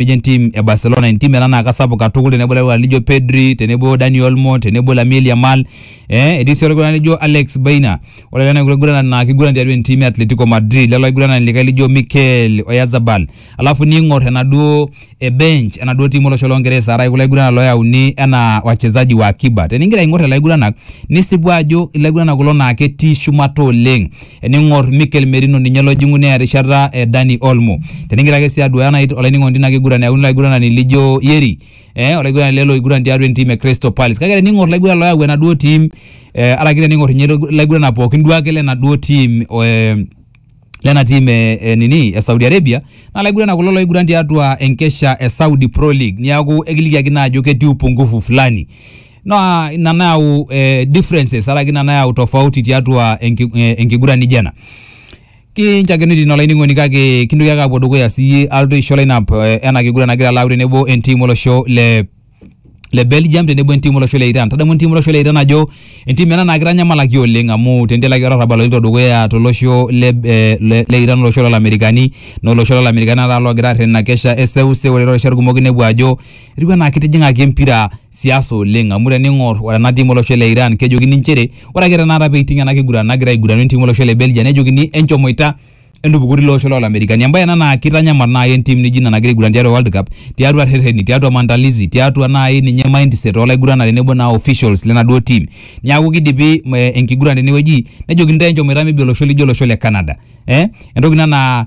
nejo entim e Barcelona entim ena naa kasapuk katukul tenebo ilarikok lijo Pedri tenebo Dani Olmo tenebo Lamine Yamal eh, etii sii olaiguranani lijo Alex Baina ore lelo aiguranak naa kiguran tiatua entim e Atletico Madrid lelo aiguranani likae lijo Mikel Oyarzabal alafu niing'or enaduo e bench enaduo tim olosho longeresa araki kulo aiguranak loyauni enaa wachezaji wa akiba teningira aing'or lelo aiguranak nisipu ajo ilaiguranak kulo naa ketii shumata oleng ening'or Mikel Merino ninye lojing'u neya rishata e Dani Olmo. Tenigira ake sii aduaya nai olainining'oni tina kiguran eyauni laiguranani lijo Yeri eh olaiguranani lele oiguran tiatua entim e Crystal Palace. Kake tening'or laiguran loyau enaduo tim eh araki tening'or ninye laiguranak pookin duo ake lenaduo tim eh lena tim e, e nini e Saudi Arabia naa laiguranak kulo loiguran tiatua enkesha e Saudi Pro League. Niaku ekilikiaki naa ajo ketii upungufu fulani. naa ina nayau eh, differences araki ina nayau tofauti tiatua enki, eh, enkiguran nijo ena kinchakeni tino olainining'oni kake kintoki ake apuo dukuya siyie alotu aisho lineup eh, ena kiguran nagira alau tenebo entim olosho le le Belgium tenebo entim olosho le Iran. Tadamu entim olosho le Iran ajo entim ena naa kitanyamalaki oleng amu tentelaki olarrabal oloito dukuya tolosho le, eh, le, le Iran olosho lolamerikani naa olosho lolamerikani naa taata logira arrerena kesha eseuse ore toorishat kumok inepu ajo Etiu anaa kitijing'aki empira siasa oleng amu tening'or ore ena tim olosho le Iran kejokini nchere ore ake tenakata peiting ena kiguran nagira aiguranu entim olosho le Belgium nejokini enchomoita entupukoto ilo osho loolamerikani. Embae ena naa kitanyamal naai entim nijo ina nagira aiguran tiatua World Cup tiatua rrereni, tiatua maandalizi, tiatua naai ninye mindset oo laiguranani tenebo naa officials lenaduo tim. Niaku kidipi enkiguran tenewueji nejokini intae enchomoita maybe olosho lijo olosho le Canada. Entoki ina naa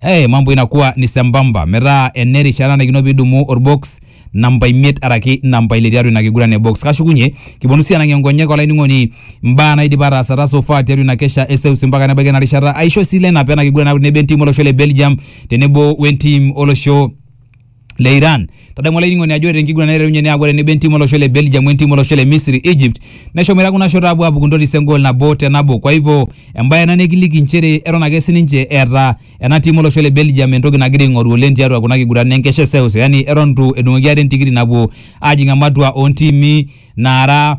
eh, mambo inakuwa ni sambamba metaa ene rishata nanarikino pidumu orbox namba imiet araki namba ile tiatua ina kiguran e box kashukunye kiponu sii anang'ie nkonyek olainining'oni mbaa naidipa ataasata so far tiatua ina kesha eseus mpaka nebaiki ena rishata aisho sii lineup ena kiguran nabo entim olosho le belgium tenebo wentim olosho le Iran. Tadamu olainining'oni ajo ore tenkiguran naiterunye neaku ore tenebo entim olosho le Belgium wentim olosho le Misri Egypt neshomoita kuna shot aapuo aapuku ntotis engol nabo te nabo. Kwa hivyo embae ena nikiliki nchere eton ake sininche eeta ena tim olosho le Belgium entoki nagira aing'oru oleng tiatua kuna kiguran enkesha e seuseu yani eton itu edung'oki ate entikiti napuo aajing ematua oontiimi naara